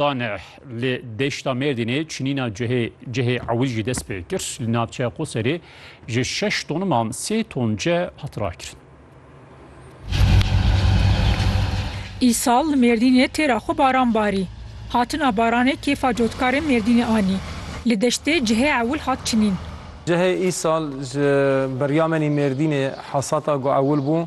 Tanî li deşta Mêrdînê çinîna cihê cihê ewil jî dest pê kir. Li navçeya Qoserê ji şeş toniman sê ton cih hat rakirin. Îsal li Mêrdînê têra xwe baran barî. Hatina baranê kêfa cotkarên Mêrdînê anî. Li deştê cihê ewil hat çinîn. Cihê îsal ji Beryamanî Mêrdînê hesata ku ewil bû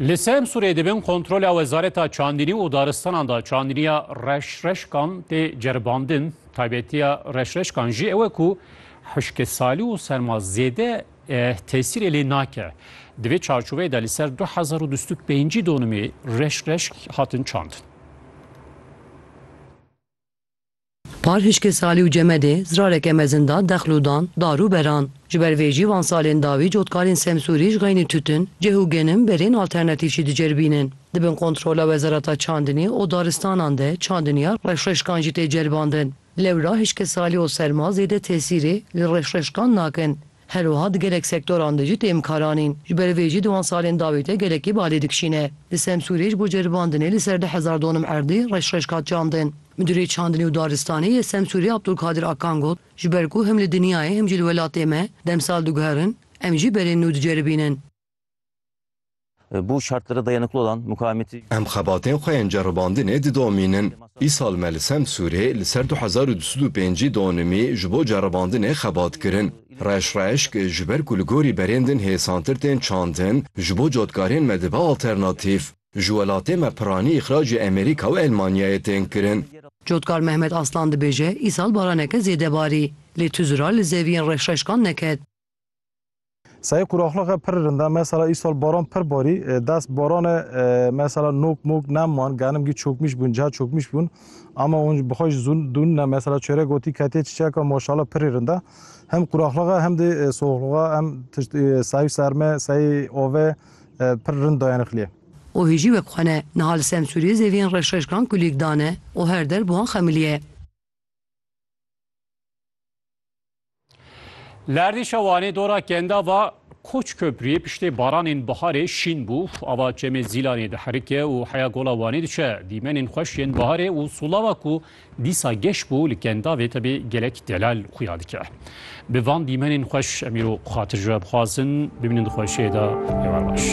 Li Semsûrê di bin kontrola Wezareta Çandînî û Daristanan de çandîniya reşreşkan tê ceribandin. Taybetiya reşreşkan jî ew e ku hişkesalî û serma zêde tesîrê lê nake. Di vê çarçoveyê de li ser du hezar û du sed û pêncî donimê reşreşk hatin çandin. Par hişkê Salî û Cemedê zirareke mezin da dexl û dan, dar û beran. Ji ber vê jî van salên dawî cotkarên Semsûrî ji xeynî tûtin, cih û genim berên alternatîfjî diceribînin. Di bin kontrola Wezareta Çandinî û Daristanan de çandiniya reşreşkan jî tê ceribandin. Lewra hişkê Salî û serma zêde tesîrê li reşreşkan nakin. Her wiha di gelek sektoran de jî tê imkaranîn. Ji ber vê jî di wan salên dawî de gelekî balê dikişîne. Di Semsûrê ji bo ceribandinê li ser du hezar donum erdê reş reş hat çandin. Midûrê Çandinê û Daristanê yê Semsûrê Abdulkadir Akan got, Ji ber ku him li dinyayê him jî li welatê me demsal diguherin, em jî berên nû diceribînin. Bu şartlara dayanıklı olan mukavemeti. Em xebatên xwe yên ceribandinê didomînin. Îsal me li Semsûrê li ser du hezar û du sed û pêncî donimî ji bo ceribandinê xebat kirin. Reş Reşk, Ji ber ku li gorî berên din hêsantir tên çandin, ji bo cotkarên me dibe alternatîf. Ji welatê me piranî îxracê Amerîka û Elmanyayê tên kirin. Cotkar Mehmet Aslan dibêje, Îsal baraneke zêde barî. Lê tu zira li zeviyên reşreşkan neket. Sayê quraxlixê pir rind e. Mesela îsal baran pir barî. Dest baranê mesela nok mok nem man. Genim gî çokmîş bûn, ca çokmîş bûn. Ama hûn bi xwe jî zûn dûn ne. Mesela çêrek gotî ketê çiçeka maşala pirî rind e. Hem quraxlixe hem dê soxlixe hem tişt sayî serme, sayî ove pir rind dayanixliyê. O hê jî wek xwe ne. Niha li Semsûriyê zeviyên reşreşkan kulîk dane û her der bi wan xemilîye. Lerdî şewanê dora kenda va Koç Köprüyê piştê baranên biharê şîn bû. Ava çemê Zîlanê diherike û heya gola Wanê diçe. Dîmenên xweş yên biharê û solava ku dîsa geş bû li kendavê tevê gelek delal xuya dike. Bi van dîmenên xweş em îro xatirjwe bixwazin bimînin di xweşiyê de heval baş.